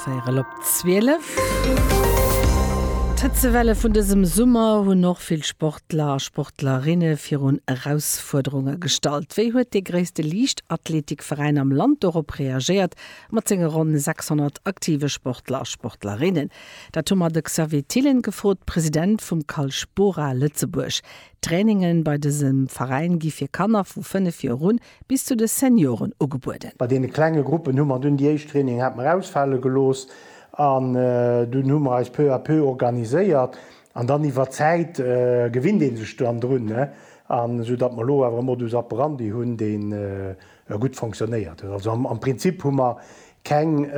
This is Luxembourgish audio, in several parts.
Véierel op 12. D'Hëtzewelle vun dësem Summer hunn och vill Sportler a Sportlerinne virun Erausfuerderunge gestallt. Wéi huet dee gréisste Liichtathleetikveräin am Land dorop reagéiert, mat senge ronn 600 aktive Sportler a Sportlerinnen? Dat hu mer de Xavier Thillen gefrot, President vum Calspora Lëtzebuerg. D'Traininge bei dësem Veräin gi fir Kanner vu 5 Joer un Bis zu de Senioren ugebueden. Bei deene klenge Gruppen hu mer dunn déi éischt Trainingen hat mer ausfale gelooss an dunn hu mer eis peu à peu organiséiert an dann iwwer d'Zäit gewinnt ee sech dann drun, an esou datt mer elo awer e Modus operandi hunn, deen gutt fonctionnéiert huet. Also am Prinzip hu mer keng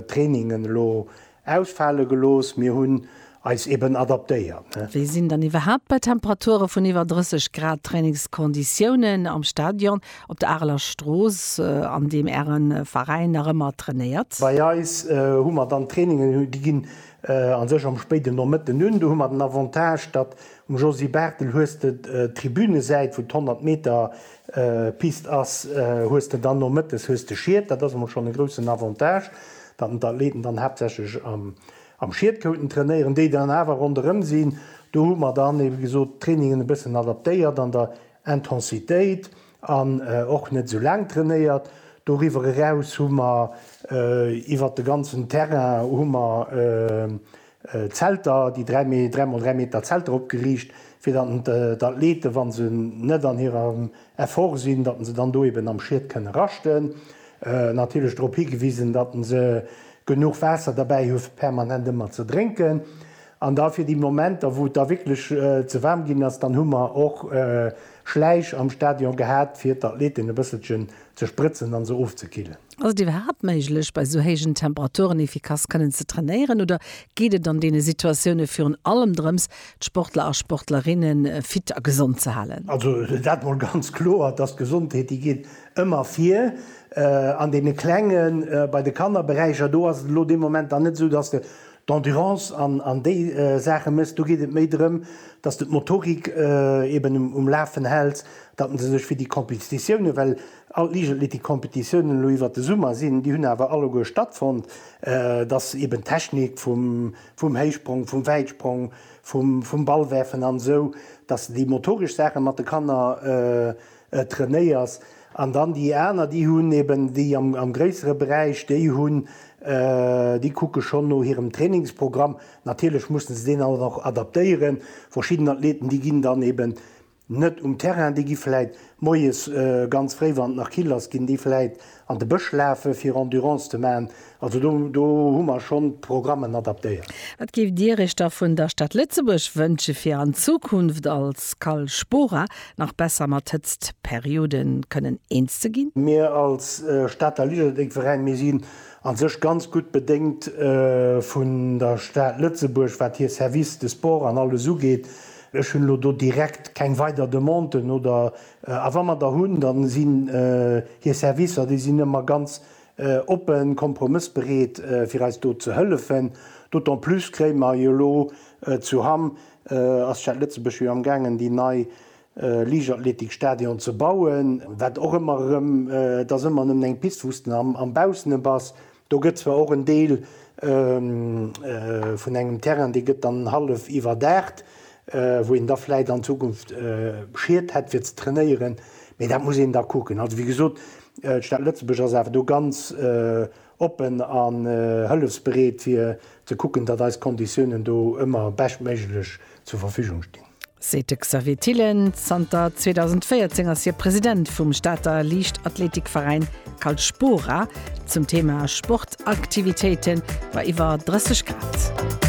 Trainingen elo Ausfale gelooss, mir hunn eis eben adaptéiert. Wéi sinn dann iwwerhaapt bei Temperature vun iwwer 30 Grad d'Trainingskonditiounen am Stadion op der Areler Strooss, an deem Äre Veräin nach ëmmer trainéiert? Bei eis hu mer dann d'Trainingen, déi ginn a sech am spéiden Nomëtten un. Do hu mer den Avantage, datt um Josy Barthel hues de d'Tribünesäit, wou d'Honnert Meter Piste ass, hues de dann nomëttes hues de Schied, dat ass emol schonn e groussen Avantage, datt den d'Athleten dann haaptsächlech am Schied kouten trainéieren, déi dann awer ronderëm sinn. Do hu mer dann ebe gesot d'Trainingen e bëssen adaptéiert an der Intensitéit an och net esou laang trainéiert. Doriwwer eraus hu mer iwwert de ganzen Terrain hu mer Zelter, déi 3 mee 3 mol 3 Meter Zelter opgeriicht, fir datt d'Athleten, wann se net an hirem Effort sinn, datt se dann do eben am Schied kënne raschten. Natierlech drop higewisen, datt se genuch Waasser derbäi hu fir permanent ëmmer ze drénken. An da fir déi Momenter, wou et da wierklech ze waarm ginn ass, dann hu mer och Schläich am Stadion gehat, fir d'Athleten e bësselchen ze sprëtzen an se ofzekillen. Ass et iwwerhaapt méiglech bei sou héijen Temperaturen efficace kënnen ze trainéieren oder geet et an deene Situatioune virun allem drëms d'Sportler a Sportlerinne fit a gesond ze halen? Also dat mol ganz kloer, dass d'Gesondheet déi geet ëmmer vir. An deene klengen, bei de Kannerberäicher do ass et elo dee Moment dann net esou, dass de d'Endurance an, an déi Saache méchs, do geet et méi drëm, datt de d'Motorik eeben um Lafen hält, datt en se sech fir déi Competitiounen, well all d'Liichtathletikcompetitiounen elo iwwert de Summer sinn, déi hunn awer alleguer stattfonnt, datt eeben d'Technik vum, vum Héichsprong, vum Wäitsprong, vum, vum Ballwerfen an esou, datt se déi motoresch Saache mat de Kanner, trainéiers an dann déi aner déi hunn eben déi am gréissere Beräich déi hunn déi kucke schonn no hirem Trainingsprogramm. Natierlech mussen se deen dann och adaptéieren. Verschidden Athleten déi ginn dann eben net um Terrain, déi gi vläit moies ganz fréi wann et nach kill ass ginn déi vläit An de Bësch lafe fir Endurance ze maachen. Also do hu mer schonn d'Programmen adaptéiert. Wat géift Dir Iech da vun der Stad Lëtzebuerg wënsche fir an Zukunft als Cal Spora nach besser mat Hëtztperiode kënnen eens ze ginn? Mir als Stater Lichterdéckveräin, mir sinn a sech ganz gutt bedéngt vun der Stad Lëtzebuerg wat hir Services de sport an alles ugeet. Ech hunn elo do direkt keng weider Demanden oder A wa mer der hunn, da sinn hir Servicer, déi sinn ëmmer ganz oppen, kompromëssbereet, fir eis do ze hëllefen. D'autant plus kréie mer jo elo zu Hamm, ass d'Stad Lëtzebuerg jo amgaangen, déi nei Liichtathletikstadion ze bauen, wat och ëmmer erëm, et ass ëmmer nëmmen eng Pist, wou s de am Baussene bass, Do gëtt zwar och en Deel vun engem Terrain, dee gëtt dann hallef iwwerdaacht, wou een da vläicht an Zukunft Schied hätt fir ze trainéieren, mee dat muss een da kucken. Also wéi gesot, d'Stad Lëtzebuerg ass awer do ganz oppen a hëllefsbereet fir ze kucken, datt eis Konditiounen do ëmmer beschtméiglech zur Verfügung stinn. Seet de Xavier Thillen. Zanter 2014 ass hie President vum Stater Liichtathleetikveräin Calspora. Zum Thema Sportaktivitéite war iwwer 30 Grad.